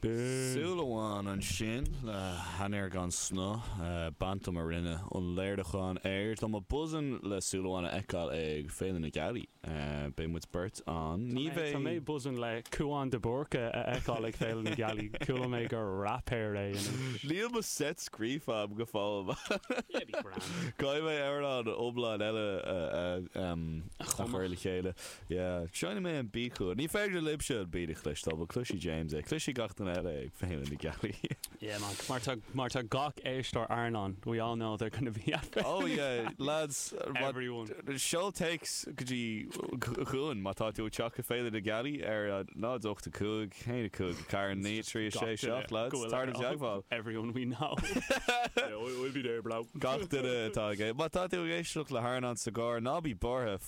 Súil amháin ansin le hainnir gan snáth, bantum a rinne an léiriúchán air. Tá mé buzzin' le súil amháin a fheiceáil ag Féile na Gealaí. Beidh muid beirt ann. Ní bheidh. Tá mé buzzin' le Cúán de Búrca a fheiceáil ag Féile na Gealaí. Chuala mé gur raipéir é anois. Níl mo set scríofa agam go fóill. Yeah, be grand. Caithfidh mé amhrán iomlán eile a chur le chéile. Yeah, seinnfidh mé an beat chugat. Ní féidir libhse an beat a chloisteáil, but cloisfidh James é. Cloisfidh gach duine eile ag Féile na Gealaí. Yeah man, mar tá, mar tá gach éisteoir Airneáin, we all know they're gonna be at the. Oh yeah, lads, Everyone. seol téacs go dtí chugainn má tá tú ag teacht ag Féile na Gealaí ar 0, 8, 5, 1, 5, 4, 9, 3, 6, 7, lads, le dhul i dteagmháil. Everyone we know. Yeah, we'll be there, bro. gach duine atá ag é. Má tá tú ag éisteacht le hAirneán sa gcarr, ná bí buartha,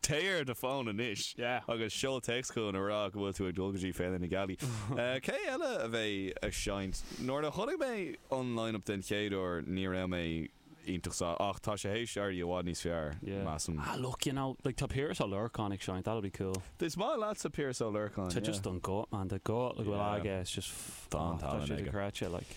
Téigh ar do fón anois agus seol téacs chugainn ag rá go bhfuil tú ag dul go dtí Féile na Gealaí. Cé eile a bheidh ag seinnt? Nuair a chonaic mé an line-up den chéad uair ní raibh mé iontach sásta, ach tá sé th'éis éirí i bhfad níos fearr, measaim. Ah look, you know, like tá Piaras Ó Lorcáin ag seinnt, that'll be cool. Is maith leatsa Piaras Ó Lorcáin, yeah. Tá just an guth, man, tá guth le go bhfuil aige, it's just, tá an tallann aige. Tá sé dochreidte, like.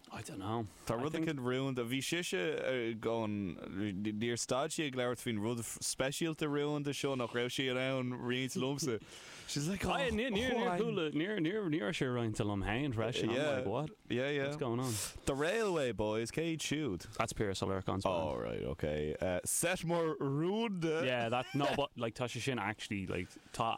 I don't know. Tá I rud think. éicint rúnda. Bhí sise ar an, níor stad sí ag labhairt faoin rud speisialta rúnda seo nach raibh sí in ann roinnt liomsa. She's like, oh, I, níor, níor, níor, chuala, níor, níor, níl sé roinnte liom héin freisin. Yeah. I'm like, what? Yeah, yeah. What's going on? The Railway Boys, cé iad siúd? That's Piaras Ó Lorcáin's band. All right, okay. Uh, set mór rúnda. Yeah, that, no, but, like, tá sé sin actually, like, tá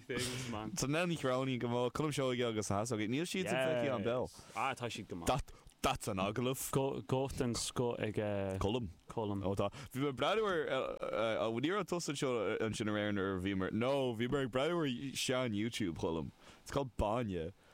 Nell Ní Chróinín, Go maith. Colm Seoighe agus na hEasógaí, níl siadsan feicthe a'm beo. Yes. Ah, tá siad go maith. That's an agallamh. Guth den scoth ag Colm. Colm. Ó tá. Bhí mé breathnú ar ní raibh tusa anseo ansin aréir nuair a bhíomar, no, bhíomar ag breathnú ar sean-YouTube Cholm. It's called Báine.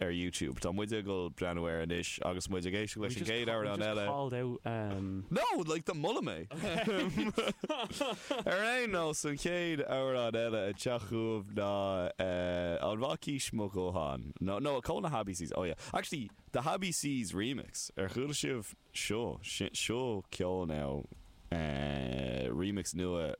ar YouTube. Tá muid ag dhul breathnú air anois agus muid ag éisteacht leis an gcéad amhrán eile. We've just called out um. No! Like the moladh mé! Ar aon nós, an chéad amhrán eile ag teacht chugaibh ná eh, An Mhac Aois Mo Dhótháin. No, no, ceol na hABCs. Oh yeah. Actually, the hABCs remix. Ar chuala sibh seo? Seo ceol now eh, remix nua